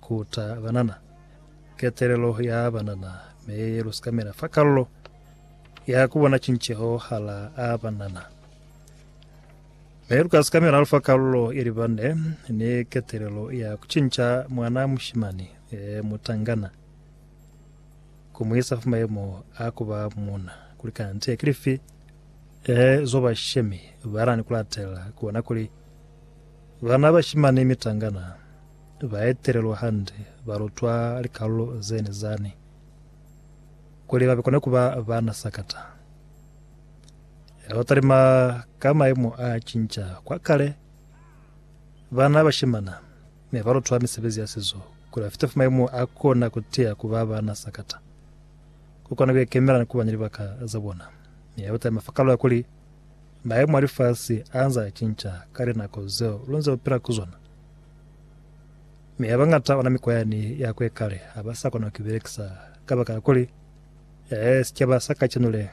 Ku ta banana ketelelo ya banana me ye lu sikamela fa kalulo ya ku bona cinceho hala a banana. Me lu ka sikamela lu fa kalulo ye libande ni ketelelo ya ku cinca mwana mushimani e mutangana ku mu isa fa mayemo a ku ba muuna. Kuli kanti ki lifi e zo bashemi ba na ni ku latela ku bona kuli ba na bashimani mitangana? Ba etelelwa hande ba lutwa likalulo zene zani kuli ba kone kuba bana sakata. Yaba ba talima ka maimo a cinca kwa kale. Bana bashimana ne ba lutwa misebezi ya sizo kuli ba fite fa maimo a kona kutiya kuba bana sakata. Ku kona kuikemela ni kuba ni libaka za bona. Mi yaba talima fa kalulo ya kuli maimo a lifasi anze a cinca ka linako zeo lu nze lu pila ku zona. Mi habañata ona mikwa yani ya kwe kale haba sa kona ku belekisa kabakala kuli, ee, sicaba sa kacenu le,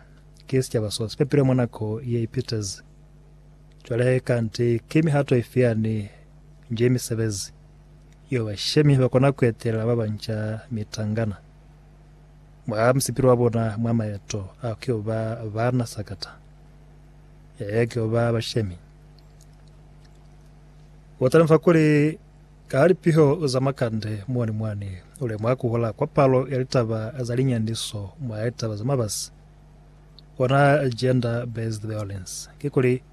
ki sicaba so si pepilwe mwa nako ye ipitezi. Cwale he, kanti ki mihato ifi yani nje mi sebezi, yo bashemi ba kona ku etelela ba banca mitangana mwa musipilo wa bona mwa maeto a ku yo ba baana sakata, ee, ku yo ba bashemi? U talusa kuli, Ka ha lipiho za makande mwani mwani, u lemuha ku hola kwa palo ya litaba za linyaniso mwa litaba za mabasi, ona gender based violence. Kikuli,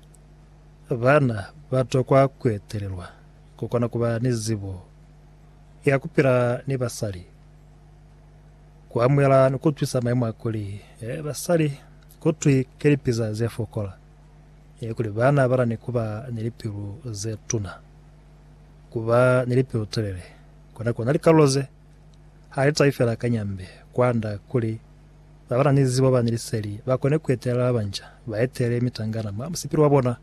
bana ba tokwa ku etelelwa ku kona ku ba ni zibo ya ku pila ni basali, ku amuhela ni ku utwisa maimo a kuli basali ku twi ki lipiza ze fokola. ili kuli ba na bata ni ku ba ni lipilu ze tuna. Ku ba ni lipilu telele kona ku na likalulo ze ha li tahi fela ka nyambe, kwanda kuli ba ba na ni zibo ba ni liseli ba kone ku etelela ba banca, ba etele mitangana mwa musipili wa bona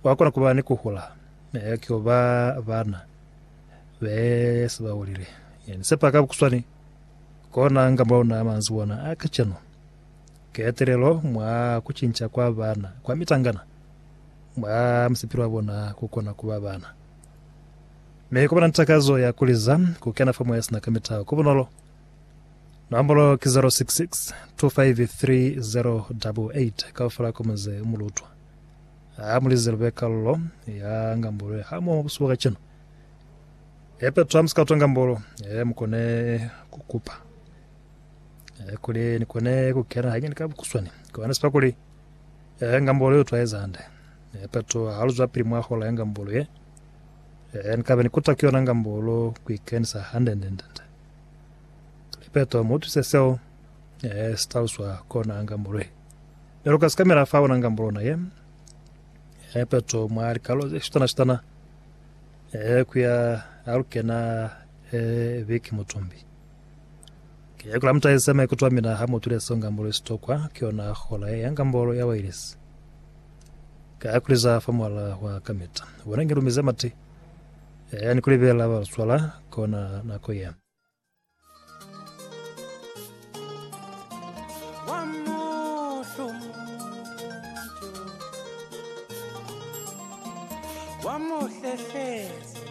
wa kona ku ba ni ku hula ki ku ba bana be se ba hulile. Ni sepa ka bukuswani kona nga mulauna a manzwi ona a kacenu. Ketelelo mwa ku cinca kwa bana kwa mitangana mwa musipili wa bona ku kona ku ba bana. Mi ku ba na takazo ya ku liza ku kena fa Moya sina ka mitaho ku bunolo. Nombolo ki 066 253088 kaufela ku muze u mulutwa. Ha mu lize lu be kalulo ya ngambolo ha moho busihu bwa kacenu. Epe twa musika utwa ngambolo, e mu kone ku kupa. Eh, kuli ni kone ku kena ha nyani ka bukuswani ko ana sipa kuli eh ngambolo yo twaeza hande eh pato ha lu zwa pili mwa hola ya ngambolo ye eh ni kabe ni kuta ku yona ngambolo ku ikenisa hande nde nde nde kuli pato mu tuse seo eh staluswa kona ngambolo ye lero ka sikamela fa ona ngambolo na ye eh pato mwa likalo ze shitana shitana eh kuya alukena eh biki mutumbi Ki yako la mutahisa maikuto a mina ha mutwile seo ngambolo isitokwa ki yona hola ye ya ngambolo ya wailesi. Ka ya kuliza fa mwala wa kamita. Bona nge lumize mati. Ya yani ku libela ba luswala kona nako ye. Wa muhlehlezi.